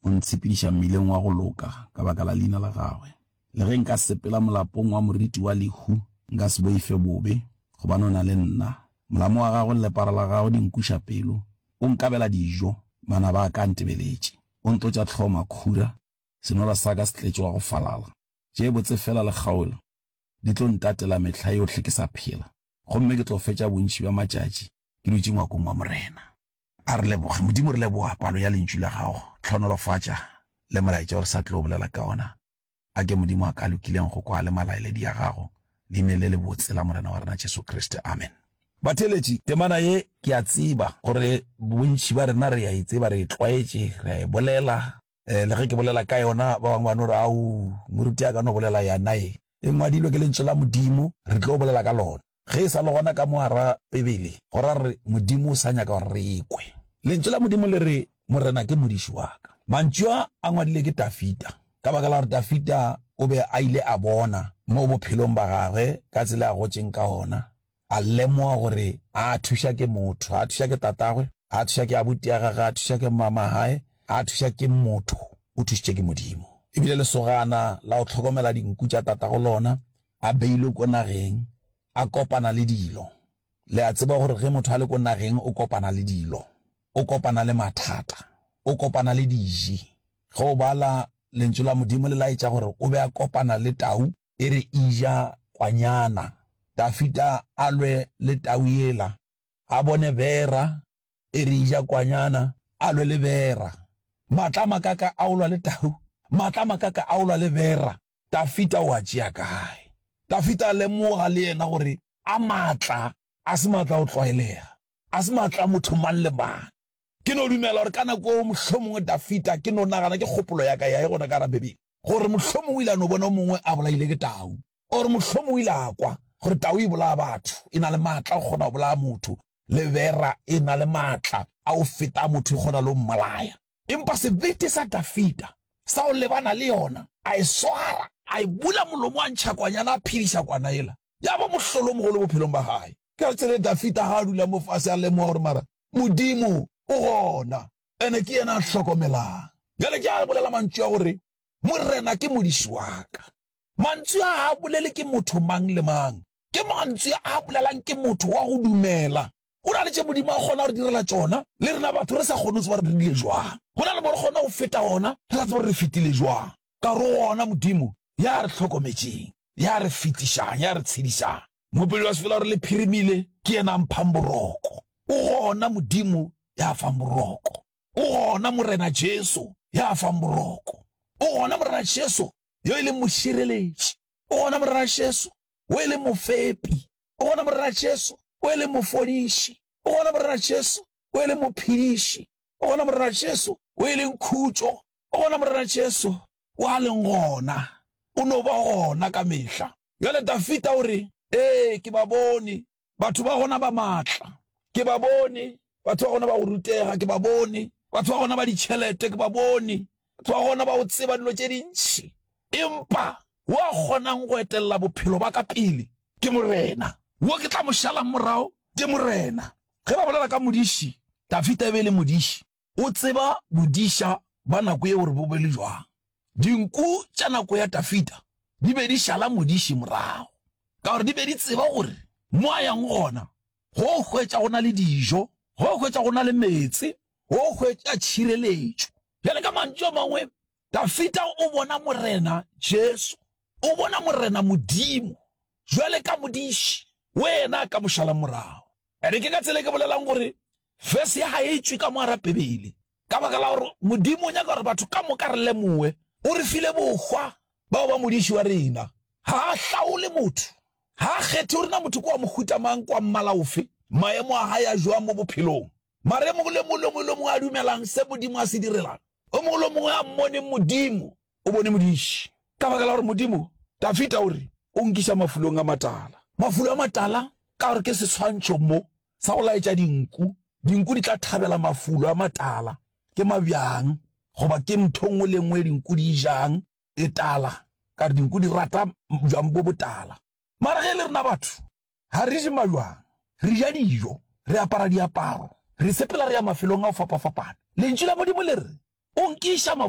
O ntshepediša mmileng wa go loka ka baka la leina la gagwe. Le ge nka sepela molapong wa moriti wa lehu, nka se boife bobe, gobane o na le nna. Molamo wa gago le lepara la gago di nkuša pelo. O nkabela dijo, manaba a ka a ntebeletše. O ntlotša hlogo makhura, senora sa ka se tletše wa go falala. Tše botse feela le kgaolo di tlo ntatela mehla yohle ke sa phela, gomme ke tlo fetša bontši bja matšatši ke dutše ngwakong wa Morena. A re leboge. Modimo, re leboga palo ya Lentšu la Gago. Tlhonolofatša le molaetša o re sa tlo bolela ka ona. A ke Modimo a ka lokileng go kwa le malaeledi a Gago, Leineng le lebotse la Morena wa rena Jesu Kriste. Amen. Batheeletši, temana ye ke a tseba gore bontši ba rena re a e tseba, re e tlwaetše, re a e bolela. Eh, le ge ke bolela ka yona ba bangwe ba no re au moruti a ka no bolela yanae e ngwadilwe ke lentso la modimo re tlo bolela ka lona ge e sa le gona ka moara pebele go ra re modimo o sa nyaka gore re ekwe lentso la modimo le re morena ke modiši wa ka mantšu a a ngwadile ke tafita ka baka la gore tafita o be a ile a bona mo bophelong ba gagwe ka tsela a gotseng ka ona A lemoga gore a a thuša ke motho, a a thuša ke tatagwe, a a thuša ke abuti ya gagwe, a a thuša ke mmamagae, a a thuša ke motho, o thušitšwe ke Modimo. E bile lesogana la go hlokomela dinku tša tatago lona a beilwe ko nageng, a kopana le dilo. Le a tseba gore ge motho a le ko nageng o kopana le dilo, o kopana le mathata, o kopana le diji. Ge o bala Lentšu la Modimo le laetša gore o be a kopana le tau, e re ija kwanyana. Dafita a lwe le tau yela, a bone bera, e re ija kwanyana, a lwe le bera. Matla a makaka a go lwa le tau, matla a makaka a go lwa le bera, Dafita o a tšea kae? Dafita a lemoga le yena gore a matla a se matla a go tlwaelega, a se matla a motho mang le mang. Ke no dumela gore ka nako eo mohlomongwe Dafita, ke no nagana ke kgopolo ya ka ya e gona ka gare Bibele, gore mohlomongwe o ile a no bona o mongwe a bolaile ke tau, or mohlomongwe o ile a kwa gore tau e bolaya batho, e na le maatla go kgona go bolaya motho, le bera e na le maatla a go feta a motho, e kgona le go mmolaya. Empa sebete sa Dafita sa go lebana le yona, a e swara, a e bula molomo, a ntšha kwanyana, a phediša kwana yela, ya ba mohlolomogolo bophelong ba gae. Ka tsela e Dafita ga a dula mo fase a lemoga gore mara Modimo o gona, ene ke yena a hlokomelang. Bjale ke a bolela mantšu a gore Morena ke modisi wa ka. Mantšu a a bolele ke motho mang le mang. Ke mantšu a a bolelang ke motho wa go dumela. Go na le tše Modimo a kgona go re direla tšona, le rena batho re sa kgone go tseba gore re dirile jwang. Go na le mo re kgona go feta gona, re sa tsebe gore re fetile jwang. ka go wona Modimo ya re hlokometšeng, ya re fetišang, ya re tshedišang. Mopeli wa sepela o re, Le phirimile, ke yena a mphang boroko. O gona Modimo ya fang boroko. O gona Morena Jesu ya fang boroko. O gona Morena Jesu yo e leng mošireletši. O gona Morena Jesu o e leng mofepi. O gona Morena Jesu o e leng mofodiši. O gona Morena Jesu o e leng mophediši. O gona Morena Jesu o e leng khutšo O gona, Morena Jesu, wo a leng gona, o no ba gona ka mehla. Bjale Dafida o re, Ee, ke ba bone, batho ba gona ba matla. Ke ba bone, batho ba gona ba go rutega. Ke ba bone, batho ba gona ba ditšhelete. Ke ba bone, batho ba gona ba go tseba dilo tše dintši. Empa wo a kgonang go etelela bophelo ba ka pele ke Morena. Wo ke tla mo šalang morago ke Morena. Ge ba bolela ka modiši, Dafida e be e le modiši. o tseba bodiša bja nako yeo gore bo be le bjang. Dinku tša nako ya Dafida di be di šala modiši morago ka gore di be di tseba gore mo a yang gona go hwetša go na le dijo, go hwetša go na le meetse, go hwetša tšhireletšo. Bjale ka mantšu a mangwe, Dafita o bona Morena Jesu, o bona Morena Modimo jwale ka modiši wo yena ka mo šala morago. Ene ke ka tsela e ke bolelang gore verse ya ga e tšwe ka moara Bibele ka baka la gore Modimo o nyaka gore batho ka moka re lemoe o re file bohwa bao ba modiši wa rena. Ga a hlaole motho, ga a kgethe gore na motho kwa mohuta mang, kwa mmala ofe, maemo a gae a jwang mo bophelong. Mara yo mongwe le mongwe, le yo mongwe le mongwe a dumelang se Modimo a se direlang, yo mongwe le mongwe a mmone Modimo, o bone Modiši. Ka baka la gore Modimo, Dafita o re, o nkiša mafulong a matala. Mafulo a matala, ka gore ke seswantšho mo sa go laetša dinku. Dinku di tla thabela mafulo a matala. Ke mabjang, goba ke ntho nngwe le nngwe e dinku di e jang, e tala, ka gore dinku di rata bjang bo botala. Mara ge e le rena batho, Ga re je malwang, re ja dijo, re apara diaparo, re sepela re ya mafelong a go fapafapana. Lentšu la Modimo le re, O nkiša